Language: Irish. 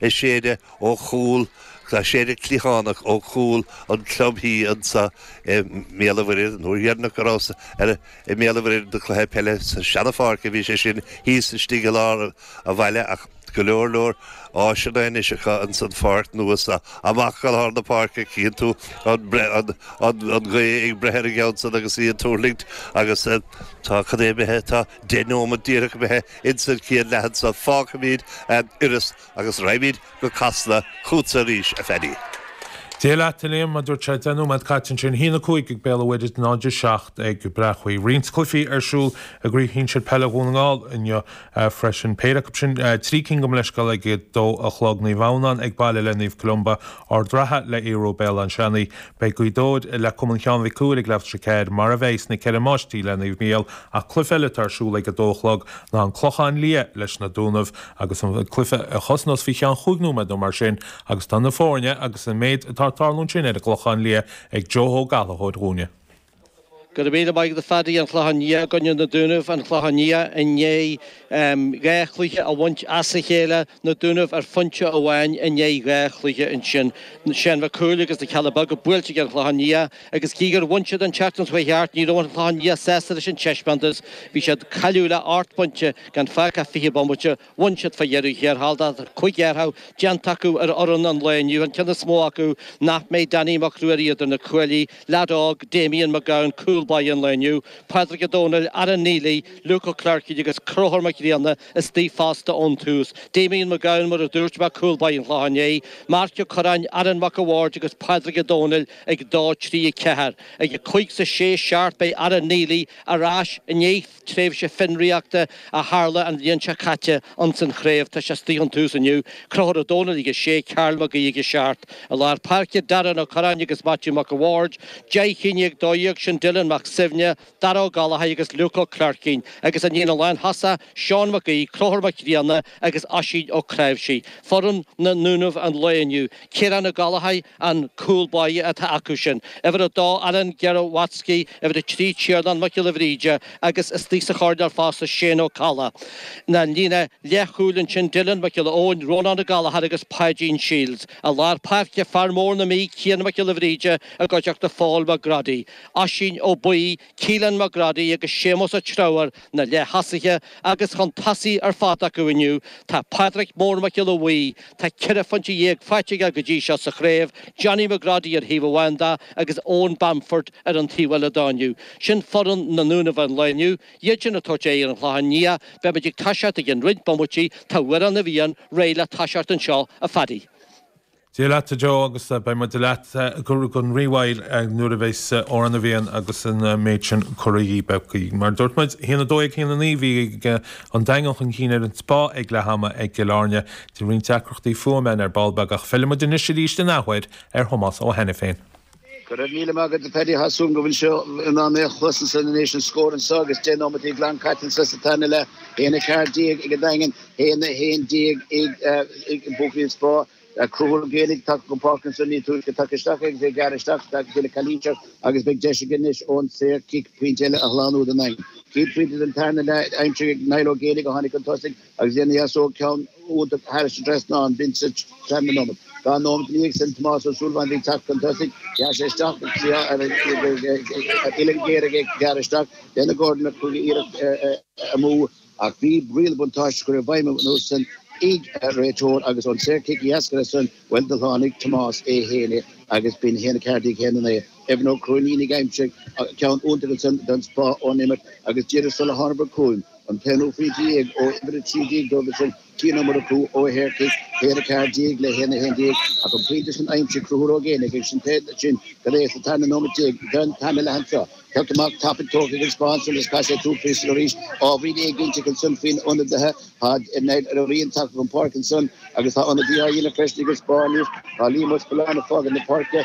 Ag séideadh ó chúl, ag séideadh cliathánach ó chúl an chlubtí anseo i mBéal an Mhuirthead. An uair dheireanach go rabhas i mBéal an Mhuirthead do cluiche peile sa seanapháirc a bhí sé sin thíos istigh i lár an bhaile ach go leor leor áiseanna anois acu ins an pháirc nua so. Amach go lár na páirce cíonn tú an ghaoth ag breith ar an gceann san agus í ag tuirlingt agus tá cad é imithe, tá deich nóimead díreach imithe Ins an chéad leath anso fágfaimíd Iorras agus raghaimíd go Casla chútsa arís, a Phaddy. Dia leat, a Liam, mar a dúirt sé. Deich nóiméad caite ansin. A haon a cúig ag Béal an Mhuirthead is 0 a 7 ag Bréachmhaigh. Roinnt cluichí ar siúl i gcraobh shinsir peile Dhún na nGall inniu freisin. Péire acu sin, trí cinn gabh mo leithscéal, ag a dó a chlog. Naomh Adhamhnáin ag baile le Naomh Columba, Ard an Rátha le Aodh Ruadh, Béal Átha Seanaidh, Beidh Gaoth Dobhair, le Cumann Sheáin Mhic Cumhaill ag leathuair tar éis a ceathair, mar a bheidh na Ceithre Máistrí le Naomh Micheál, ach cluiche eile atá ar siúl ag a dó a chlog ná an Clochán Liath leis na Dúnaibh agus an cluiche a thosnós faoi cheann chúig nóiméad nó mar sin agus tá na foirne agus an méid atá ag tarlú ansin ar an gClochán Liath ag Joe Ó Gallchóir dhúinne. Go raibh míle maith agat a Phaddy. An Clochán Liath i gcoinne Na Dúnaibh, an Clochán Liath i ndiaidh dhá chluiche a bhaint as a chéile, Na Dúnaibh ar phointe amháin i ndiaidh dhá chluiche ansin. Seán Mhic Cumhaill agus na Cealla Beaga buailte ag An Chlochán Liath agus gí gur bhain siad an tseachtain a chuaigh thart, ní raibh An Clochán Liath sásta leis an teispeántas. Bhí siad cailiúil le árt bainte, gan fágtha ach fiche bomaite. Bhain siad faoi dheireadh thiar thall tá cúig athrú déanta acu ar fhoireann an lae inniu, an ceann is mó acu nach mbeidh, Danny Mac Ruairí idir na cuaillí, lead óg, Damien McGowan, cúl báire an lae inniu, Pádraig Ó Domhnaill, Aaron Neilly, Luke Ó Cléircín agus Conchúr Mac Grianna istigh fosta ón tús, Damien McGowan mar a dúirt mé, cúl báire an Chlocháin Léith, Marc Ó Curráin, Aaron Mac a' Bhaird agus Pádraig Ó Domhnaill ag dó trí, a ceathair, ag a cúig 's a sé seacht beidh Aaron Neilly ar ais i ndiaidh. tréimhse fionraíochta a tharla an bhliain seo caite ins an chraobh tá sé istigh ón tús inniu, Conchúr Ó Domhnaill ag 6, Karl Mac Aoidh ag 7, i lár páirce, Darren Ó Curráin agus Maitiú Mac a' Bhaird, 10, 11, 12, sin Dylan Mac Suibhne, Dáire Ó Gallchóir agus Luke Ó Cléircín, agus an líne lántosach, Seán Mac Aoidh, Conchúr Mac Grianna agus Oisín Ó Cnáimhsí. Foireann na nDúnaibh an lae inniu, Ciarán Ó Gallchóir, an cúl báire atá acu sin, uimhir a dó Alan Gerowatsky, uimhir a trí Tiarnán Mac Giolla Bhríde agus istigh sa choirnéal fosta Shane Ó Colla. An líne leathchúil ansin Dylan Mac Giolla Eoin, Rónán Ó Gallchóir agus Páidín Shields. I lár páirce fear mór na Mí Cian Mac Giolla Bhríde i gcuideachta Phóil McGroddy, Oisín Ó Baoill, Keelan McGroddy agus Séamus Ó Treabhair na leath-thosaithe agus chun tosaigh ar fad acu inniu tá Pádraic Mór Mac Giolla Bhuí, tá ceithre phointe dhéag faighte aige go dtí seo sa chraobh, Johnny McGroddy ar thaobh amháin de agus Eoin Bamford ar an taobh eile dó inniu. Sin foireann na nDúnaibh an lae inniu, iad sin ag tabhairt aghaidh ar an Chlochán Liath, beimid ag toiseacht i gcionn roinnt bomaití, tá Amhrán na bhFiann réidh le toiseacht anseo, a Phaddy. Dia leat, a Joe, agus beidh muid leat gan rímhoill nuair a bheas Amhrán na bhFiann agus an méid sin curtha dhíbh agaibh. Mar a dúirt muid, haon a dó dhéag haon a naoi, bhí an Daingean chun cinn ar an Spá ag leath ama i gCill Airne, bhí roinnt deacrachtaí fuaime ann ar ball beag, ach fillfidh muid anois arís in athuair ar Thomás Ó hAiniféin. Go raibh míle maith agat, Paddy. Tá súil agam go bhfuil sibh in ann mé a chloisint ansan anois, an scór anseo agus deich nóiméad glan caite anso sa tarna leath, haon a ceathair déag ag an Daingean, haon a haon déag ag buachaillí an Spá. Conchúr Ó Géibheannaigh tagtha chun páirce anseo ní túisce, tagtha isteach agus é ag gearradh isteach deineadh calaois air agus beidh deis aige anois ón saor cic pointe eile a shlánú don Daingean. Céad phointe den tarna leath aimsithe ag Niall Ó Géibheannaigh a tháinig chun tosaigh. Agus dhéanfaidh aos óg ceann úd thairis an trasnán, Vincent Clamley Nomad. Tá an nóimeat i ndiaidh sin, Tomás Ó Súilleabháin bhí ag teacht chun tosaigh, ghearr sé isteach agus bhí ar uillinn ghéar ag gearradh isteach. Dhein Gordon Mac Coille iarracht amú ach bhí riail an bhuntáiste curtha i bhfeidhm ansan ag an réiteoir agus ón saor cic dá dheasca san bhuel do shlánaigh Tomás é fhéin é agus b'in haon a ceathair déag haon a naoi. Evan Ó Cróinín ag aimsiú ceann iontach ansan don Spá ón imirt agus díreach sula thánabhair chugainn, An t-aon ufí déag ó uimhir 13 dóibh is ea Cian Ó Murchú ó shaorchic, b'in haon a ceathair déag le haon a haon déag, ach an pointe sin aimsithe ag Conchúr Ó Géibheannaigh agus an t-éacht sin go léir sa tarna nóiméad déag den tarna leath seo. Cic amach tapaidh tógtha ag an Spá sular scar sé tú píosa arís. Ábhairín éiginnteachta ansan faoi na hionadaithe, tá Niall Ó Riain tagtha chun páirce ansan agus tá ionadaí á dhéanamh freisin ag an Spá. Tá Liam Ó Scolláin ag fágaint na páirce.